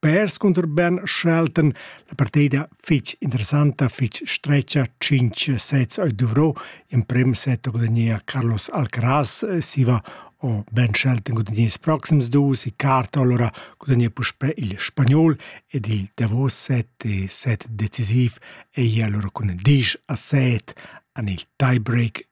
Perscunter ben schelten la partida fitg interessanta, fitg stretga, 5 sets a Duvro, in prim set gudagnea Carlos Alcaraz, siva o Ben Shelton gudagnea ils proxims dus, Icarto allora gudagnea puspè il spagnol ed il davos set e set decisiv ei allora cun 10 a 7 an il tiebreak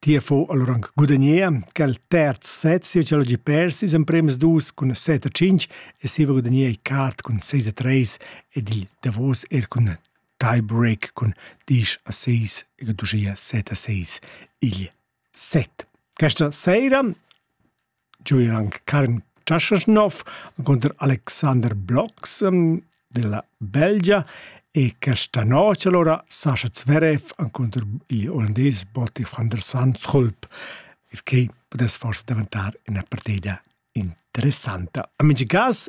Ti ha fu allura aunc gudagnea quel terz set sia ch'el hagi pers ils emprems dus cun set a tschintg e siva gudagnea il quart cun seis a treis ed il davos er cun tie-break cun diesch a seis ed uschia set a seis igl set. Questa seira Giu era anc Karin Čašnow cunter Alexander Blox della Belgia e questa notg alura Sascha Zverev encunter il olandais Botti van der Sandschulp, il quai pudess forse daventar ina partida interessanta. En mintga cas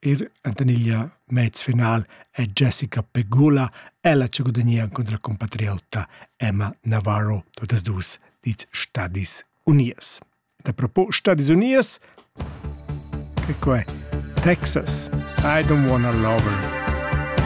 Er entaniglia mez final è Jessica Pegula. Ella ci gudagnea contro la compatriota Emma Navarro todas dus dit Stadis Unies. Da propo Stadis Unies, che qua è Texas. I don't wanna love her.